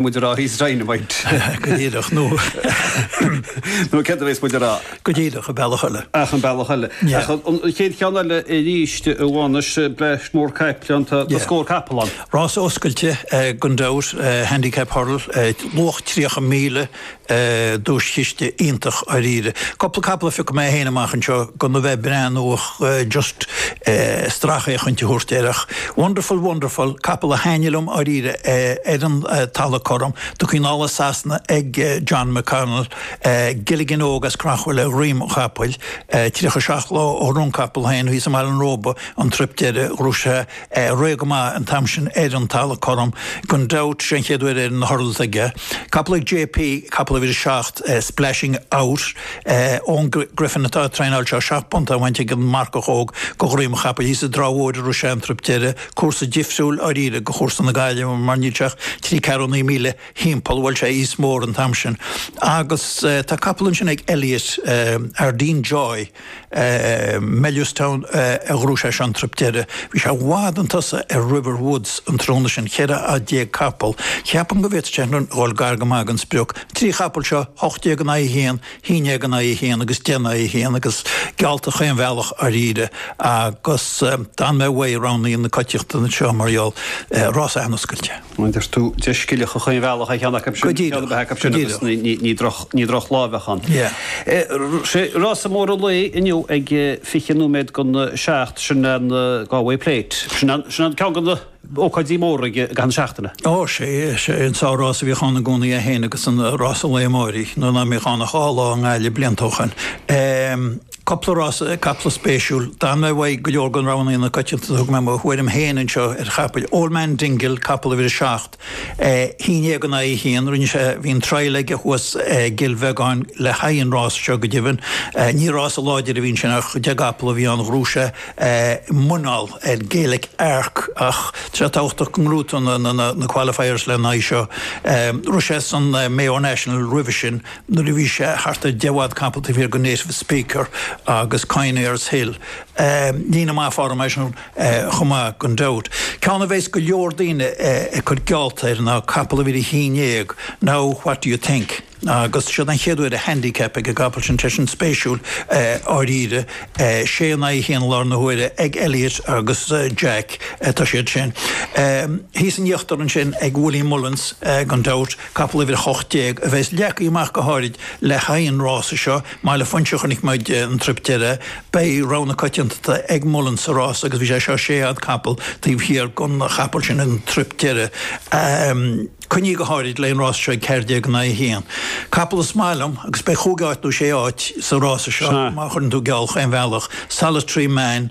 muid a rá thíos rainn a bhaint. Go díreach, nó. Nó céard a bheas muid a rá? Go díreach, an bealach eile. Ach an bealach eile. Ach an chéad cheann eile arís amháin, is breis mhór caiple ann, tá scór capall ann. Rás oscailte gan dabht, handicap hurdle, luach 30,000 duaischiste iontach dháiríre. Cúpla capall a phioc mé féin amach anseo gan a bheith ag breathnú ach just stracfhéachaint a thabhairt air ach wonderful wonderful capall a thaitnigh liom dháiríre ar an talamh cothrom de chuid Johnny Burke ag John McConnell Gilligan Óg as Creachmhaoil ar dhroim an chapaill. 37 lá ó rith an capall féin thíos i mBaile an Róba an truip deiridh ghnóthaigh sé réidh go maith an t-am sin ar an talamh cothrom. Gan dabht, sé an chéad uair ar na hurdles ag capall ag JP, capall a bhfuil 7 Splashing Out ón Griffin atá á traenáil 7 bpointe á bhaint ag an marcach óg de dhroim an chapaill. Thíos i dTrá Mhóir a raibh sé an truip deireadh, cúrsa difriúil dháiríre de chúrsa na Gaillimhe mar níl sé ach trí ceathrúna míle thimpeall, bhfuil sé níos mó an t-am sin agus tá capall ansin ag Elliot, Ardaen Joy, Mellerstown a ghnóthaigh sé an truip deireadh. Bhí sé i bhfad chun tosaigh ar River Woods an tráthnóna sin, 14 fhad capaill. Ceapaim go bhféadfadh sé sin dhul gar go maith don sprioc. Trí chapall seo, 18 in aghaidh a haon, haon dhéag in aghaidh a haon agus deich in aghaidh a haon agus geallta chaon bhealach dháiríre agus d'fhan mé uaidh roghanna na coitiantachta anseo mar gheall, rás an-oscailte. Deir tú dhá scilling chaon bhealach ar cheann acu sin. Go díreach. Ceann a bheith acu sin agus ní droch lá a bheadh ann. Sea. Rása mór an lae inniu ag fiche nóiméad don seacht, sin an Ghalway Plate. Sin an ceann de na ócáidí móra ag an tseachtain. Ó sea, sea. An sár rás a bhíodh ann i gcónaí é fhéin agus rása an lae amáirigh, nuair ná mbíodh ann ach dhá lá i nGaillimh blianta ó shoin. Cúpla rása, caiple spéisiúil. D'fhan mé uaidh go leor de roghanna na coitianta, thug mé mo thuairim féin anseo ar chapaill. Old Man Dingle, capall uimhir a seacht, cúig déag in aghaidh a haon, rinne sé, bhí an trial aige thuas i gCill Bheagáin le haghaidh an rása seo go deimhin. Ní rása láidir a bhí ansin ach deich gcapall a bhí ann, ghnóthaigh sé muineál ar Gaelic Arc ach tá sé tábhachtach go ngnóthódh na qualifiers le haghaidh seo. Rith sé san Mayo National roimhe sin. nuair a bhí sé thart ar 10 bhfad capall taobh thiar de Native Speaker agus Conyers Hill. Líne maith form aige sin chomh maith gan dabht. Ceann a bheas go leor daoine ag cur geallta air ná capall uimhir a haon déag Now what do you think? Agus seo é an chéad uair i handicap ag an gcapall sin tá sin spéisiúil dháiríre. Sé in aghaidh a haon i lár na huaire ag Elliot agus Jack atá sé sin. Thíos in íochtar ansin ag Willie Mullins gan dabht. Capall uimhir 18 a bheas leagtha amach go háirid le haghaidh an rása seo, mar le Foinse a chonaic muid an trip deireadh. Beidh rogha na coitianta ag Mullins sa rása agus bhí sé seo sé fhad capall taobh thiar gon chapaill sin an trip deireadh. Coinnithe go háirid le haghaidh an rása seo ag ceathair déag in aghaidh a haon. Capall is maith liom agus beidh chúig áit nó sé áit sa rása seo má chuireann tú geall chaon bhealach, Solitary Man,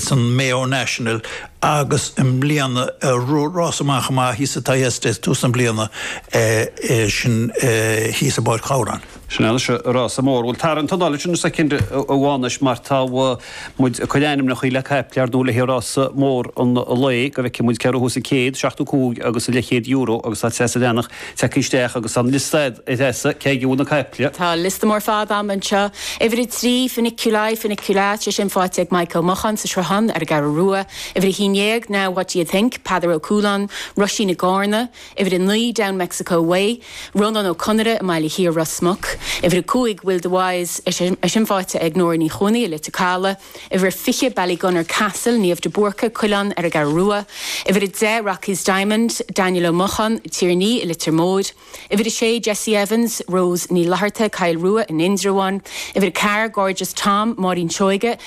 san Mayo National agus i mbliana rás an-mhaith chomh maith thíos sa Thyestes tús na bliana sin thíos i bPáirc Ghabhráin. Sin anois rása mór. Bhuel tarraing t'anáil ansin soicind amháin anois mar tá muid ag cur ainmneacha le caiple ar ndóigh le haghaidh rása mór an lae go bhfeicfidh muid cé a ghnóthós an céad, seachtó cúig agus an leathchéad euro agus tá Treasa Bhreathnach. tagtha isteach agus tá an liosta ad a Threasa, cé aige a bhfuil na caiple? Tá liosta mór fada ann anseo. Uimhir a trí, Funiculi Funicula, tá sé sin faighte ag Maidhc Ó Mocháin sa Sruthán ar an gCeathrú Rua. Uimhir a haon déag, Now what do you think? Peadar Ó Cualáin, Roisín i gCarna. Uimhir a naoi, Down Mexico Way, Rónán Ó Conaire i mBaile Thiar, Ros Muc. Uimhir a cúig, Will the Wise, é sin faighte ag Nóra Ní Chuanaigh i Leitir Calaidh. Uimhir a 20, Ballygunner Castle, Niamh de Búrca, Cuilleán ar an gCeathrú Rua, Uimhir a 10, Rocky's Diamond, Daniel Ó Mocháin, Tierney i Leitir Móir, Uimhir a 6, Jesse Evans, Rose Ní Fhlatharta, Coill Rua in Indreabhán, Uimhir a ceathair, Gorgeous Tom, Máirín Seoige,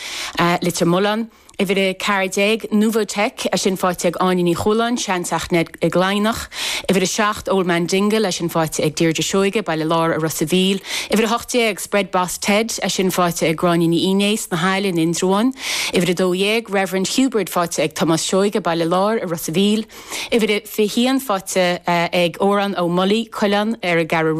Leitir Mealláin, Uimhir a ceathair déag, Nouvotic, é sin faighte ag Áine Ní Chualáin, Seanteach Ned i gCladhnach, Uimhir a seacht, Old Man Dingle, é sin faighte ag Deirdre Seoige, Baile Láir i Ros a' Mhíl, Uimhir a hocht déag, Spread Boss Ted, é sin faighte ag Gráinne Ní Fhinneadha sna hAille in Indreabhán, Uimhir 12, Reverend Hubert faighte ag Tomás Seoige, Baile Láir i Ros a' Mhíl, Uimhir 21 faighte ag Odhrán Ó Molloy, Cuilleán, ar an gCeathrú Rua.